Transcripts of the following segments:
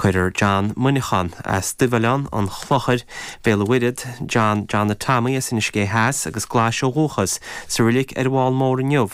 Cuirfear John Muineachán as Duibhoileán, an Chlochair, Béal a' Mhuirthead, John Johnny Tamaí as Inis Gé Theas agus Glais ó dhúchas, sa reilig ar an bhFál Mór inniu.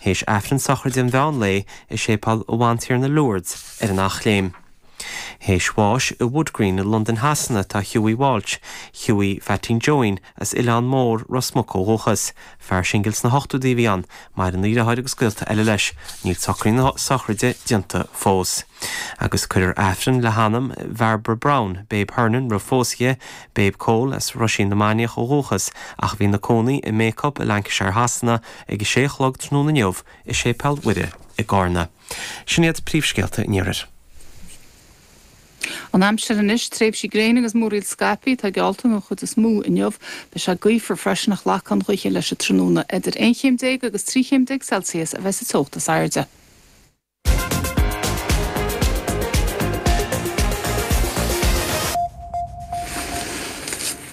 Théis Aifreann sochraide an mheán lae i Séipéal a' Bhantiarna Lourdes ar an Eachléim. Théis bháis i Wood Green i Londain Shasana tá Hughie Walsh, Hughie Pheaitín John, As Oileán Mór, Ros Muc ó dhúchas. Fear singil sna hochtóidí a bhí ann. Maireann a dheartháir agus gaolta eile leis. Níl socraí na sochraide déanta fós. Agus cuirfear Aifreann le hanam Bhairbre Brown, Babe Hernon roimh phósadh dhi, Babe Cóil as Roisín na Mainiach ó dhúchas ach a bhí 'na cónaí i mBacup i Lancashire Shasana, ag a sé a chlog tráthnóna inniu i Séipéal Mhuire i gCarna. Sin iad príomhscéalta an iarthair. An aimsir anois, tréimhsí gréine agus múraíl scaipthe atá geallta don chuid is mó inniu. Beidh sé gaofar freisin ach lagfaidh an ghaoth leis an tráthnóna. Idir aon chéim déag agus trí chéim déag Celsius a bheas an teocht is airde.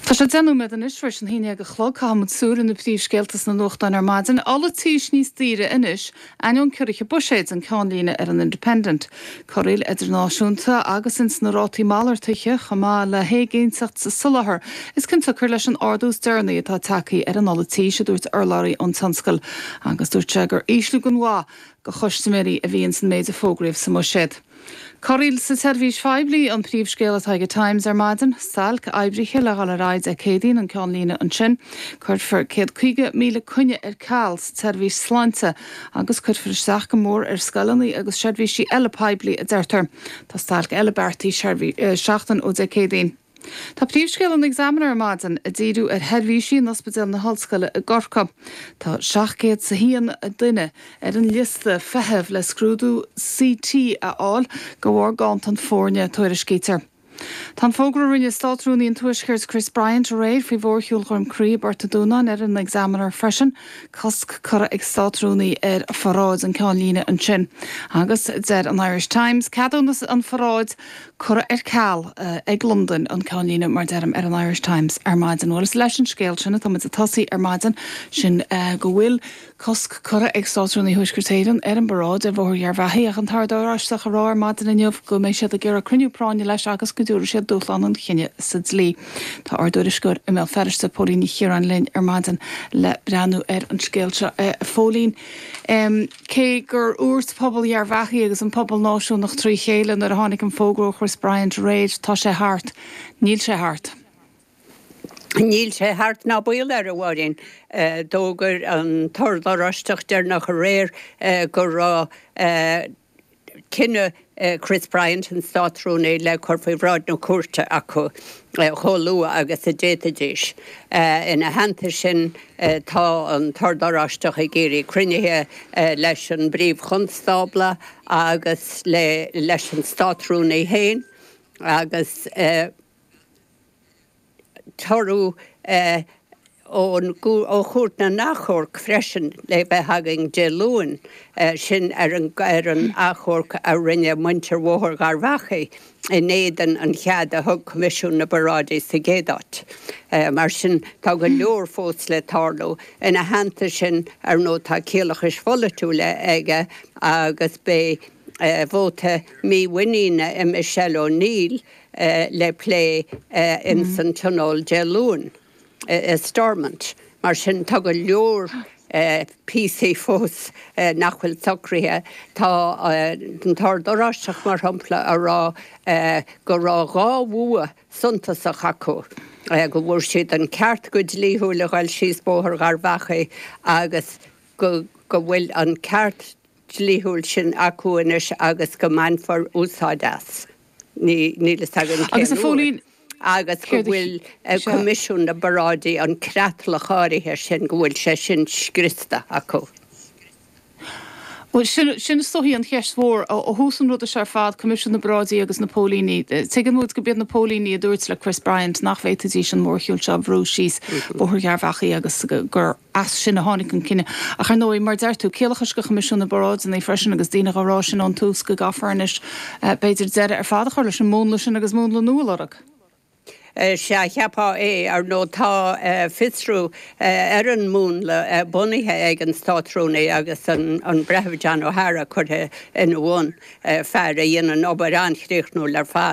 Tá sé deich nóiméad anois tar éis an haon dhéag a chlog. Caithfimid súil ar na príomhscéalta sna nuachtáin ar maidin. Ola tís níos daoire anois. Ainneoin ciorruithe Buiséid an ceannlíne ar an Independent, corraíl idirnáisiúnta agus ins na rátaí malartaithe chomh maith le héiginnteacht sa soláthar, is cionsiocair leis an ardú is deireanaí atá tagtha ar an ola tís, a dúirt urlabhraí ón tionscal agus dúirt sé gur ísliú gan mhaith do chustaiméirí a bhí ins an méid a fógraíodh sa mBuiséad. Corraíl sa tseirbhís phoiblí an príomhscéal atá ag An Times ar maidin. Stailc oibrithe le dhul ar aghaidh Dé Céadaoin an ceannlíne ansin. Cuirfear 150,000 coinne ar ceal sa tseirbhís sláinte agus cuirfear isteach go mór ar scoileanna agus seirbhísí eile poiblí, a deirtear. Tá stailc eile beartaithe seachtain ó Dé Céadaoin. Tá príomhscéal an Examiner ar maidin ag díriú ar sheirbhísí in Ospidéal na hOllscoile i gCorcaigh. Tá 701 duine ar an liosta feithimh le scrúdú CT a fháil de bharr ganntan foirne, a tuairiscítear. Tá an fógra a rinne Státrúnaí an Tuaiscirt Chris Bryant aréir faoi mhórshiúl Dhroim Crí i bPort an Dúnáin ar an Examiner freisin, cosc curtha ag Státrúnaí ar pharáid an ceannlíne ansin agus deir an Irish Times ceadúnas an pharáid. curtha ar ceal ag Londain an ceannlíne mar deirim ar an Irish Times ar maidin. Bhuel is leis an scéal sin atáimid ag tosaí ar maidin, sin go bhfuil cosc curtha ag Státrúnaí Thuaisceart Éireann ar an bparáid ar Bhóthar Gharbhachaidh ach an tOrd Oráisteach ag rá ar maidin inniu go mbeidh siad ag iarraidh cruinniú práinne leis agus go dtabharfaidh siad dúshlán an chinnidh sa dlí. Tá ár dtuairisceoir i mBéal Feirste, Póilín Ní Chiaráin linn ar maidin le breathnú ar an scéal seo. Póilín. Cé gur dhúirt pobal Gharbhachaidh agus an pobal náisiúnach trí chéile nuair a tháinig an fógra ó Chris Bryant aréir, tá sé thart, níl sé thart. Níl sé thart ná baol air, a Mháirín. D'fhógair an tOrd Oráisteach deireanach aréir go raibh cinneadh Chris Bryant, an Státrúnaí, le cur faoi bhráid na cúirte acu chomh luath agus a d'fhéadfaidís. Ina theannta sin, tá an tOrd Oráisteach ag iarraidh cruinnithe leis an bPríomh-Chonstábla agus leis an Státrúnaí féin agus, toradh ó Chúirt na nAchomharc freisin le bheith againn Dé Luain, sin ar an achomharc a rinne muintir Bhóthar Gharbhachaidh in éadan an chead a thug Coimisiún na bParáidí sa gcéad áit. Mar sin tá go leor fós le tarlú. Ina theannta sin, ar ndóigh, tá ciallachais pholaitiúla aige agus beidh vóta mímhuiníne i Michelle O'Neill, le plé ins an Tionól Dé Luain i Stormont, mar sin tá go leor píosaí fós nach bhfuil socraithe. Tá an tOrd Oráisteach, mar shampla, ag rá go raibh dhá bhua suntasach acu, go bhfuair siad an ceart go dlíthiúil a ghoil síos Bóthar Gharbhachaidh agus go bhfuil an ceart, dlíthiúil sin acu anois agus go mbainfear úsáid as, níl a fhios againn cén uair, agus go bhfuil Coimisiún na bParáidí, an creatlach áirithe sin, go bhfuil sé sin scriosta acu. Bhuel, sin, sin is dóichí an cheist mhór. Ó thús an ruda seo ar fad, Coimisiún na bParáidí agus na póilíní, tuigimid go mb'iad na póilíní a dúirt le Chris Bryant nach bhféadfaidís an mórshiúl seo a bhrú síos Bóthar Gharbhachaidh agus gur, As sin a tháinig an cinneadh. Ach ar ndóigh, mar a deir tú, ciallachais do Choimisiún na bParáideannaí freisin agus daoine dhá rá sin ón tús go gcaithfear anois b'fhéidir deireadh ar fad a chur leis an múnla sin agus múnla nua a lorg. Sea, cheapfá é. Ar ndóigh tá fiosrú ar an múnla bunaithe ag an Státrúnaí agus an Breitheamh John O'Hara curtha ina bhun, fear a dhéanann obair an-chríochnúil ar fad.